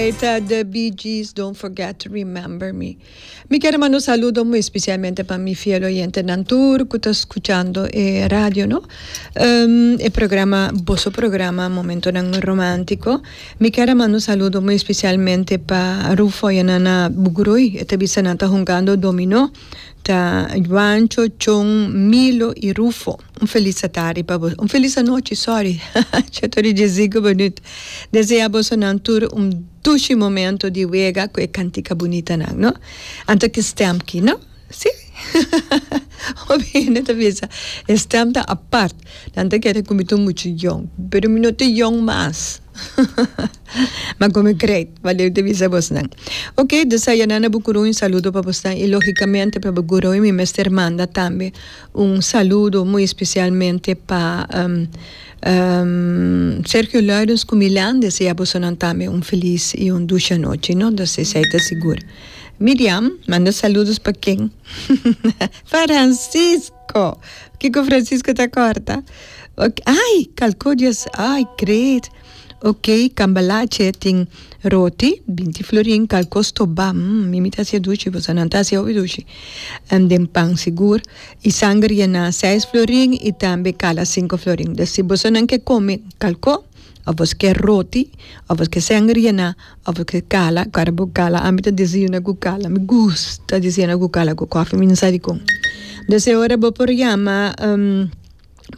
Ey ta the Bee Gees don't forget to remember me. Mi kier manda un saludo muy especialmente pa mi fiel oyentenan tur cu ta scuchando e radio no. E programa boso programa Momentonan Romantico. Mi kier manda un saludo muy especialmente pa Rufo y Nana Bugrui e ta bisa nan ta hungando dominó ta Juancho, Chon, Milo y Rufo. Un felis atardi pa boso, un felis anochi, sorry, cha ta ori dje zigu minut. Desea bosonan tur un dushi momento di wega ku e kantika bunitanan, no? Anto ki stem ki, no? Sí? Hopi hende ta bisa e stem ta apart, nan ta kere ku mi ta muchu yòn, pero mi no ta yòn mas. Ma ku mi great, Valerio ta bisa bosonan. Oke, deseanan na bo gurun un saludo pa bosonan i lógikamente pa bo gurun mi mester manda tambe. Un saludo muy especialmente pa Sergio Luijens cu Milan desea bosonan tambe un feliz y un dusha nochi no ta sesi ai ta sigur. Miriam manda saludos pa ken? Francisco! Kico Francisco ta corta? Ok, ay calcodias ay great. Ok cambalache tin roti binti florin cal cos to ba mm mi mi ta hacia dushi bosa nan ta hacia hopi dushi en den pan sigur y sanger y na seis florin y tambe cala cinco florin den si bosa nan ke come cal co of bosa ke roti of bosa ke sanger y na of bosa ke cala cuando bo cala ami ta desayuna cu cala mi gusta desayuna cu cala cu coffee mi na sa dicon den si ora bo por llama.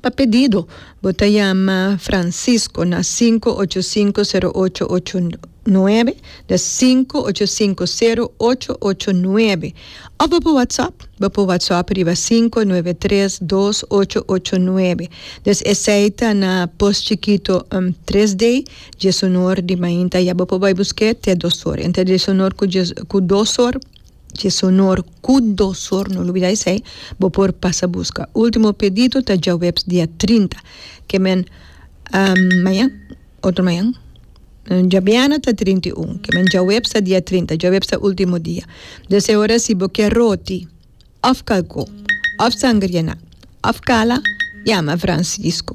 Pa pedido, bo ta yama Francisco na sinku ocho sinku sero ocho ocho nuebe, des sinku ocho sinku sero ocho ocho nuebe, òf bo por whatsapp, bo por whatsapp riba sinku nuebe tres dos ocho ocho nuebe, des esei ta na pos chikito tres dei djesunor di mainta ya bo por bai busk'e te dos or entre djesunor ku dos or. Dj'esonor ku dosor no lubida esei bo por pasa buska. Ultimo pedido ta djaweps dia trinta. Ke men mañan otro mañan djabiana ta trinta i un ke men djaweps ta dia trinta djaweps ta ultimo dia des e ora si bo ke roti of kalko of sangriena of kala yama Francisco.